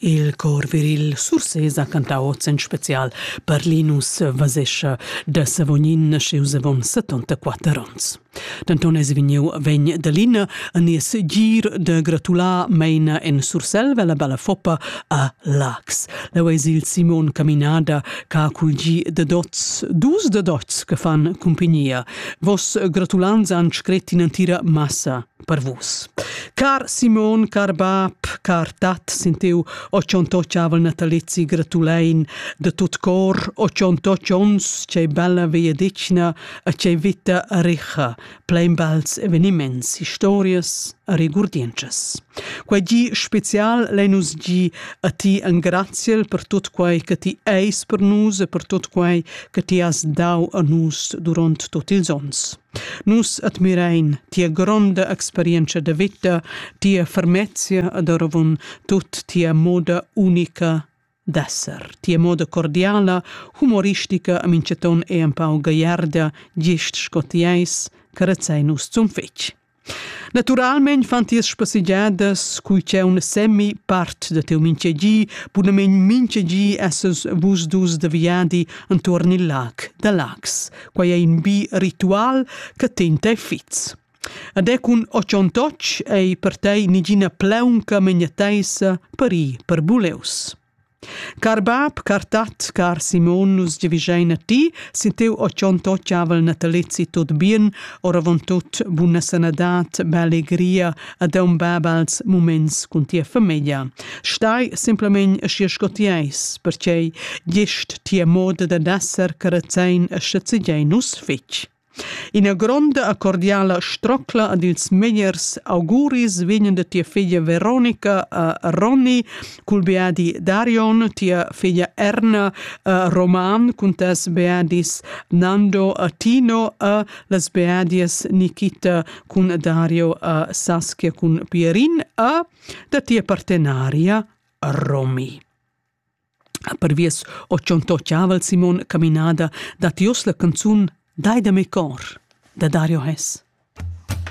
Il cor viril Sursés ha cantau oz en special per Linus Vasescha da Savognin naschius avon 74 onns. Denton eis vegniu vegn da Lina a nies gir da gratular meina en Surselva la balla foppa a Lax. Leu eis il Simon Caminada che ha cul gi da dots, dus da dots che fan cumpignia. Vos gratulanza han scret in'entira massa per vus. Car Simon, car bab, car tat, sentiu o cionto ciavel natalizi gratulein de tut cor, o cionto cions ce bella via dicna a ce vita richa, plein bels eveniments, historias, rigurdiences. Quei gi special lenus gi a ti engraziel per tut quei che ti eis per nus e per tut quei che ti has dau a nus durant tot ils ons. Nus admirain tia gronda experientscha da vita, tia fermezia ed oravon tut tia moda unica d'esser, tia moda cordiala, humoristica a minchaton e empau gagliarda, gist sco ti eis, carezzein nus zun fetg. Naturalmein fan tias spassegiadas cui c'è un semi part da teu mintgegi, bunamein mintgegi essas vus dus da viadi entuorn il lac da Lax. Quai è in bi ritual che ten te fits. Ed è cun ochontoc ei per tei nigina pleunca megnateisa per i per buleus. Car bab, car tat, car Simon, nus giavischein a ti, sin tiu otschon toccavel natalizzi tut bien, oravontut buna sanadad, bellegria ed aun bab als muments cun tia famiglia. Stai simplamein aschi sco ti eis, pertgei gest tia moda da dasser carezzein e schazegiei nus fetg. Ina gronda cordiala strocla ad ils megliers auguris vegnan da tia figlia Veronica a Ronny cul beadi Darion, tia figlia Erna a Roman cun tes beadis Nando a Tino a las beadias Nikita cun Dario a Saskia cun Pierin a da tia partenaria Romy. Perviers ho tschontochava il Simon caminada dad uors la canzun Dai da me cor da Dario Hess.